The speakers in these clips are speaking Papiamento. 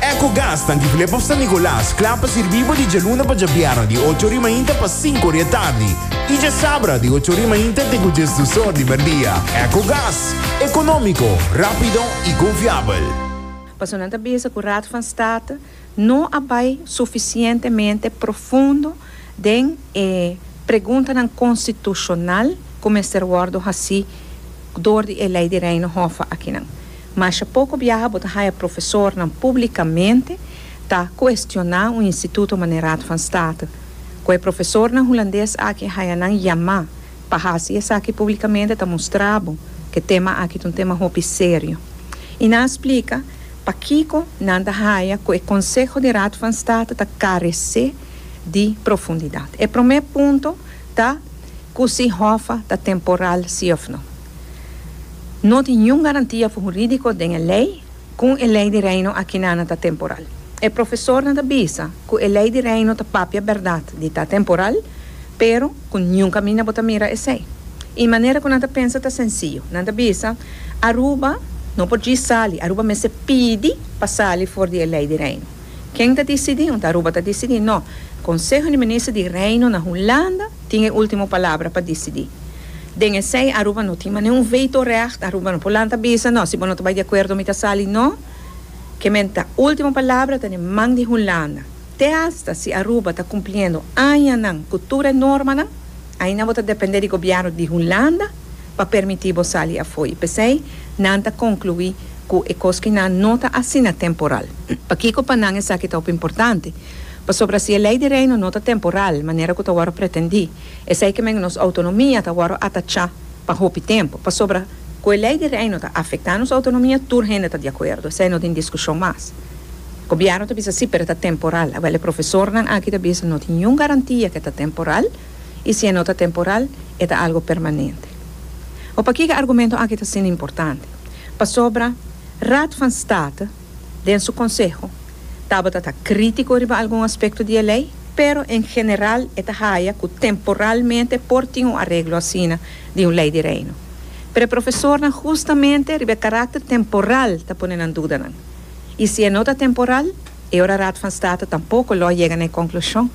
Ecogas ta difilé pa San Nicolas, kla pa sirbí bo di djaluna pa djabierna di ocho ori mainta pa sinku ori e tardi i djasabra di ocho ori mainta te ku djes dus or di merdia. Ecogas, ekonómiko, rápido i konfiabel. Pasobra nan ta bisa ku Raad van State no a bai sufisientemente profundo den e preguntanan konstitushonal ku mester wòrdu hasí dor di e Lei di Reino Hof akinan. Masha poko biaha bo ta haya profesornan publicamente ta cuestiona un instituto manera Raad van State. Cu e profesornan Hulandes aki haya nan yama pa haci esaki publicamente ta mustra bo cu e tema aki ta un tema hopi serio. Y nan a splica pakico nan ta haya cu e Conseho di Raad van State ta carece di profundidad. E prome punto ta cu si Hoffa ta temporal si of no. No tin niun garantia hurídiko den e lei ku e Lei di Reino akinana ta temporal. E profesornan ta bisa ku e Lei di Reino ta papia bèrdat di ta temporal, pero ku niun kaminda bo ta mira esei. E manera ku nan ta pensa ta sensiyu. Nan ta bisa, Aruba no por djis sali, Aruba mester pidi pa sali for di e Lei di Reino. Ken ta disidí? Unta Aruba ta disidí? No, Konseho di Minister di Reino na Hulanda, tin e ultimo palabra pa disidi. Den esei Aruba no tin mane un veto recht, Aruba no por lanta bisa no, si bo no ta bai di acuerdo mi ta sali no, ke men ta ultimo palabra ta den man di Hunlanda. Te hasta si Aruba ta cumpliendo añanan cu tur e normanan, aina bo ta depende di gobierno di Hunlanda pa permiti bo sali afoy. Pesei nan ta conclui cu e cos kinan no ta asina temporal. Pakico pa nan esaki ta hopi importante? Pasobra si e Lei di Reino no ta temporal manera ku ta wòrdu pretendí, esei ke men nos outonomia ta wòrdu atachá pa hopi tempu. Pasobra. Ku e Lei di Reino ta afektá nos outonomia, tur hende ta di akuerdo. Esei no tin diskushon mas. Gobièrnu ta bisa sí, pero e ta temporal. Awel e profesornan aki ta bisa no tin niun garantia ke ta temporal, i si e no ta temporal, e ta algu permanente. Hopi akí ku e argumento aki ta asina importante. Pasobra Raad van State. den su konseho, tabata ta krítiko riba algun aspekto di e lei, pero en general e ta haya ku temporalmente por tin un areglo asina di un Lei di Reino. Pero e profesornan hustamente riba e karakter temporal ta pone nan dudanan. I si e no ta temporal, e ora Raad van State tampoko lo a yega na e konklushon.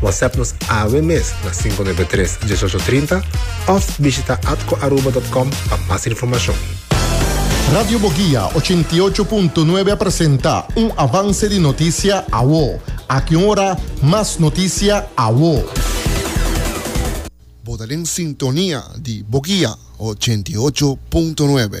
WhatsApp nos awe mes na 593 1830 of bishita atcoaruba.com pa mas informacion. Radio Boguia 88.9 a presenta un avance di noticia awo. Aki un ora mas noticia awo. Bo ta den sintonia di Boguia 88.9.